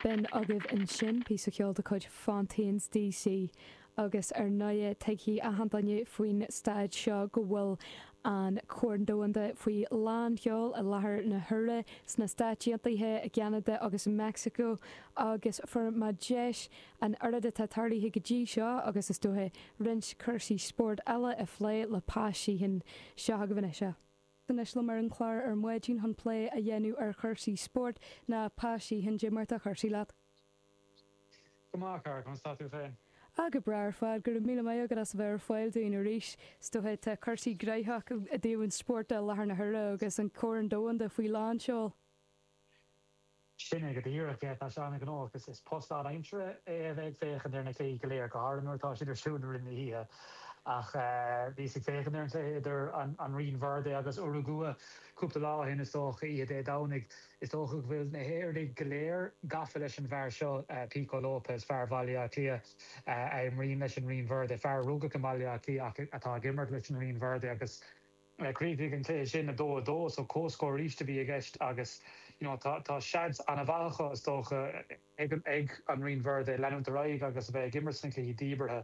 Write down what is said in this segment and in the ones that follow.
B'in agaibh ansin píosa ceoil de chuid Fontaines DC, agus ar ndóigh tuigfidh achan duine faoin stáid seo go bhfuil an Corn Domhanda faoi lán sheol i láthair na huaire sna Stáit Aontaithe, i gCeanada agus i Meicsiceo, agus fuair mé deis an oiread atá tarlaithe go dtí seo, agus is dóiche é, roinnt cúrsaí spóirt eile a phlé le Pat Sheehan. Seo agaibh anois é. Anois liom ar an chlár ar maidin chun plé a dhéanamh ar chúrsaí spóirt, ná Pa Sheehan cad é mar atá cúrsaí leat. Go maith, a chara, conas tá tú féin? Ah, go breá ar fad, go raibh míle maith agat as a bheith ar fáil dúinn arís. Is dócha é, tá cúrsaí graitheach i dtaobh an spóirt i láthair na huaire agus an Corn Domhanda faoi lánseol. Sin é go díreach é, tá sé an-ghnóthach agus is post lánaimseartha é a bheith ag féachaint ar na cluichí go léir, go háirithe nuair atá siad ar siúl i rith na hoíche. Ach bhíos ag féachaint ar an cluiche idir an Rinn Verde agus Urugua cúpla lá ó shin, is dócha, oíche Dé Domhnaigh. Is dócha go bhfuil na hÉireannaigh go léir gafa leis an bhfear seo, Pico Lopes, fear Bhaile Átha Cliath a imríonn leis an Rinn Verde, fear a rugadh i mBaile Átha Cliath ach atá ag imirt leis an Rinn Verde agus, Chríochnaigh an cluiche sin 2, 2 so comhscór arís a bhí i gceist agus you know tá tá seans ana mhaith acu is dócha ag an ag an Rinn Verde leanúint ar aghaidh agus a bheith ag imirt sna cluichí díbeartha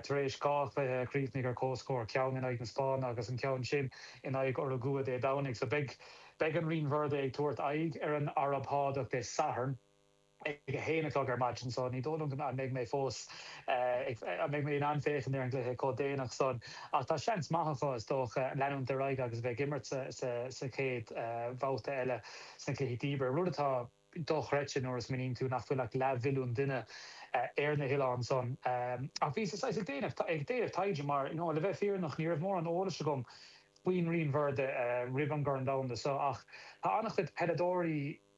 tar éis dhá chluiche a chríochnaigh ar comhscór, ceann in aghaidh na Spáinne agus an ceann sin in aghaidh Urugua Dé Domhnaigh. So beidh beidh an Rinn Verde ag tabhairt aghaidh ar an Araib Shádach Dé Sathairn. ag a haon a chlog ar maidin so ní dóigh liom go mbeidh mé fós ag, an mbeidh mé in ann féachaint ar an gcluiche chomh déanach san ach tá seans maith acu is dócha leanúint ar aghaidh agus a bheith ag imirt sa chéad bhabhta eile sna cluichí díbeartha, rud atá dochreidte nuair a smaoiníonn tú nach bhfuil ach leath mhilliún duine ar na hoileáin san ach bhíos ag déanamh taighde mar le bheith fírinneach ní raibh mórán eolais agam faoin Rinn Verde roimh an gCorn Domhanda so ach tá an-chuid peileadóirí